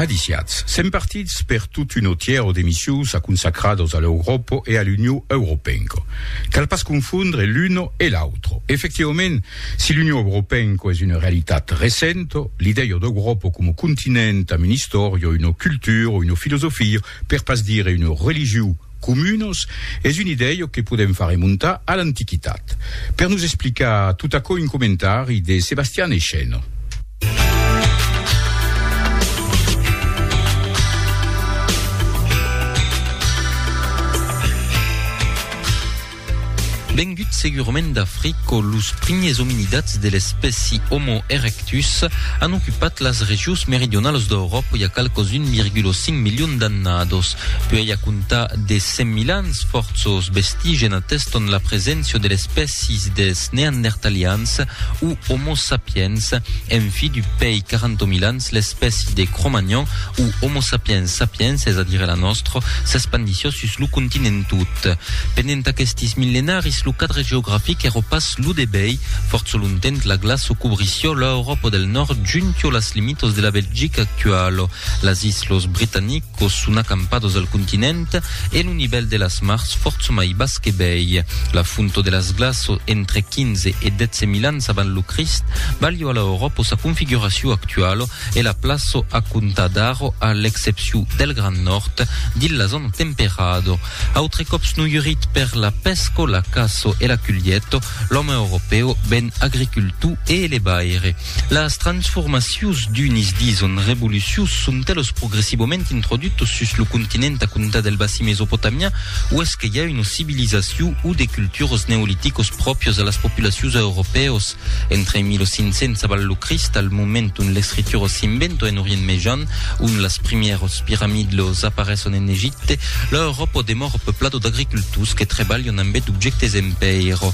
Aliciatz, sèm partits per tot un autièro d'emissions a consacrados a l'Europo e a l'Union Europenco. Cal pas confondre l'uno e l'autro. Efectivament, si l'Union Europenco es una realitat recento, l'idèio d'Europo coma continent, am un istòrio, una cultura, una filosofia, Per pas dire un religiu comunos, es un idèio que podèm far remontar a l'antiquitat. Per nos explicar tot aquò un comentari de Sebastian Echeno. Vengut segurament d'Africo, los primiers ominidats de l'espèci Homo erectus an ocupat las regions meridionalas d'Euròpa i a qualques 1,5 milions d'annados. Puèi a comptar de 100.000 ans, fòrços vestigen ateston la preséncia de l'espècies dels Neandertalians o Homo sapiens, en fi du pèi 40.000 ans, Dins l'espèci de Cro-Magnon o Homo sapiens sapiens, es a dire la nòstra, s'espandissió sus lo continent tot. Pendent aquestis millenaris lo cadre geografic èra pas lo debei, fòrça longtemps la glaça cobrissió l'Euròpa del Nòrd juntió las limitas de la Belgica actuala, las Islas Britanic, Quò son acampados al continent e lo nivèl de las mars fòrça mai bas que bèi. La fonto de las glaços entre 15 e 12 mil ans avant lo Crist balhò a l'Auròpo sa configuracion actualo e la plaço a comptar d'aro a l'excepcion del Grand Nòrd dins la zòna temperado. Autre còps noiurit per la pèsco, la caço e la culhieto, l'òme europèu ven agricultor e elevaire. Las transformacions d'unis dison revolucius son telos progressivament introdutos sus lo continent a comptar del bassin mesopotamian uèsque i a una civilizacion o de cultures neoliticos pròprios a las populacions europèos entre 1500 abans lo Crist al moment ont l'escritura s'inventa en Orient Mejan ont las primièras piramidles apareson en Egipte l'Euròpa demòra peuplada d'agricultors que trebalhan ambé d'objèctes en pèira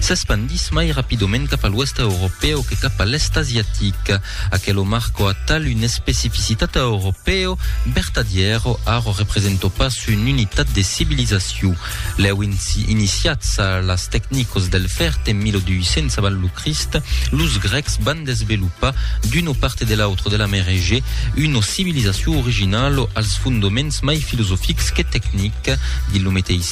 S'espandís mai rapidament cap a l'Oèsta Europèu que cap a l'Èst Asiatic. Aquelo marco atal un especificitat a Europèu, vertadièro, arro representò pas un unitat de civilizacion. Lèu iniciats a las tecnicos del fèrt en 1200 avant lo Crist, los Grècs van desvelopar d'uno parte de l'autre de la Mer Egèe una civilizacion originalo als fondoments mai filosofics que tecnic dins lo meteissi.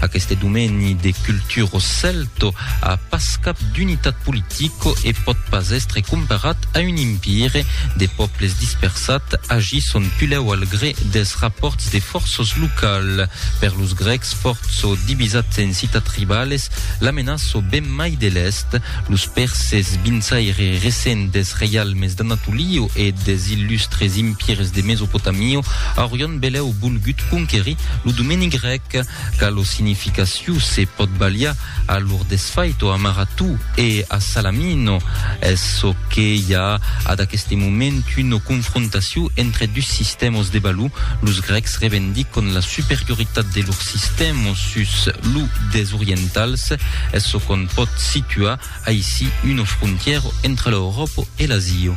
Aqueste domeni de culturo celto a pas cap d'unitat politico e pòt pas èstre comparat a un impire. De pòbles dispersat agisson pulèu al gré dels rapòrts de fòrços local. Per los grècs fòrço divisats en citat rivales, la menaço ben mai de l'èst. Los pèrses, vinçaire recent dels reialmes d'Anatolio e des illustres impires de Mesopotamio, aurion belèu volgut conquerir lo domeni grèc. que qu'a lo significaciu se pòt balhar a lor desfait o amaratu e a salamino es çò que i a ad aqueste moment una confrontaciu entre dus sistèmas de balhar los grècs revendicon la superioritat de lor sistèma sus lo des orientals es çò qu'on pòt situar aicí una frontièra entre l'Euròpa e l'Asia